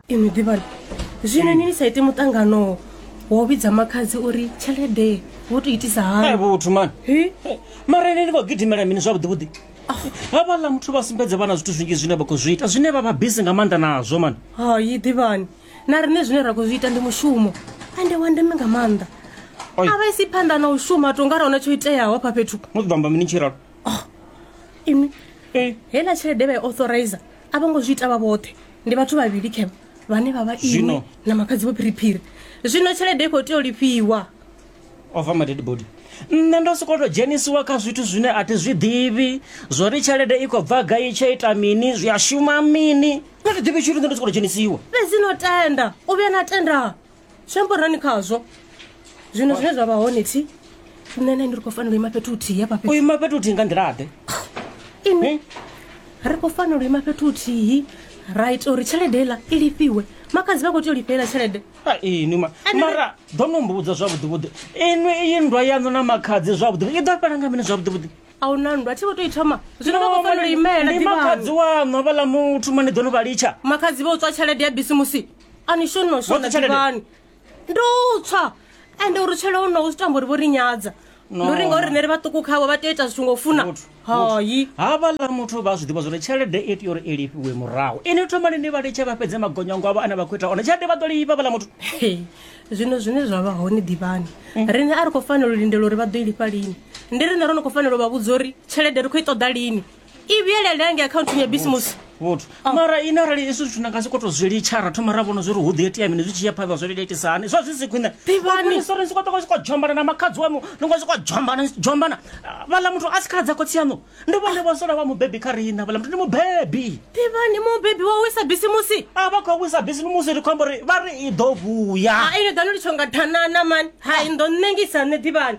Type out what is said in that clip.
inwi ḓivhani zwino ni ni sa ite muṱangano wa u vhidza makhadzi uri tshelede wo to itisa hani Hai vhuthu man. Hi? Mara ene ni khou gidimela mini zwavhuḓi vhuḓi? Havhaḽa muthu vha sumbedza vhana zwithu zwinzhi zwine vha khou zwi ita zwine vha vha busy nga maanḓa nazwo man. hayi ḓivhani na riṋe zwine ra khou zwi ita ndi mushumo ende wa ndeme nga maanḓa Oi. a vha isi phanḓa na u shuma to nga ra huna tsho iteaho hafha fhethu Mu ḓo amba mini tshiralo? oh, ini e heiḽa tshelede vha i authorizer a vho ngo zwi ita vha vhoṱhe ndi vhathu vhavhili khevha vhane vha vha iwe na makhadzi vho phiriphiri zwino tshelede i khou tea u lifhiwa ova maded body nṋe ndo sokoto dzhenisiwa kha zwithu zwine a thi zwi ḓivhi zwo ri tshelede i khou bva gai tsha ita mini zwi a shuma mini nda thi ḓivhi tshithu nṋe ndo sokoto dzhenisiwa fhedzi no tenda u vhuya na tenda zwi amba uri nani khazwo zwino zwine zwa vha hone thi nṋe na ini ri khou fanela u ima fhethu huthihi hafha fhethu u ima fhethu huthihi nga nḓilaḓe ini ri khou fanela u ima fhethu huthihi ra ita uri tshelede iḽa i lifhiwe makadzi vha khou tea u lifhelela tshelede ini ma mara ḓo no mbudza zwavhuḓivhuḓi inwi iyi nndwa yaṋu na makhadzi zwavhuḓivhuḓi i ḓo fhela nga mini zwavhuḓivhuḓi a hu na nndwa thi vho tou i thoma zwino vha khou fanela u imela ndi makhadzi waṋu havhaḽa muthu mani ḓo no vha litsha makhadzi vha u tswa tshelede ya bisimusi a ni shoni no shona Woṱhe tshelede? ḓivhani ndo tswa ende uri tshele o no u tamba uri vho ri nyadza No. ndo ri ngauri rine ri vhaṱuku khavho vha tea u ita zwithu ngo u funa Muthu, hayi havhaḽa muthu vha zwi ḓivha zwone tshelede i tea uri i lifhiwe murahu ini thomani ni vha litshe vha fhedze magonyango avho ane vha khou ita one tshelede vha ḓo lifha vhaḽa muthu Hey, zwino zwine zwa vha hone ḓivhani rine a ri khou fanela u lindela uri vha ḓo i lifha lini ndi rine ro no khou fanela u vha vhudza uri tshelede ri khou i ṱoḓa lini i vhuyelela ngei akhaunthini ya bisimusi vhuthu mara ine arali izwi zwithu na nga si koto zwi litsha ra thoma ra vhona zwi ri hu ḓi itea mini zwi tshi ya phanḓa zwi litsha hani zwa zwi si khwine Ḓivhani. sori si kotoka si ko dzhombana na makhadzi wanu ni ngo si ko dzhombana dzhombana vhala muthu a si khala dza khotsi yanu ndi vhone vho sola vha mubebi kha riṋa vhala muthu ndi mubebi ḓivhani mubebi wa wisa bisimusi a vha khou wisa bisi musi ri khou amba uri vha ri i ḓo vhuya ha ino ḓa no litsho nga thanana mani hai ndo ṋengisa nṋe ḓivhani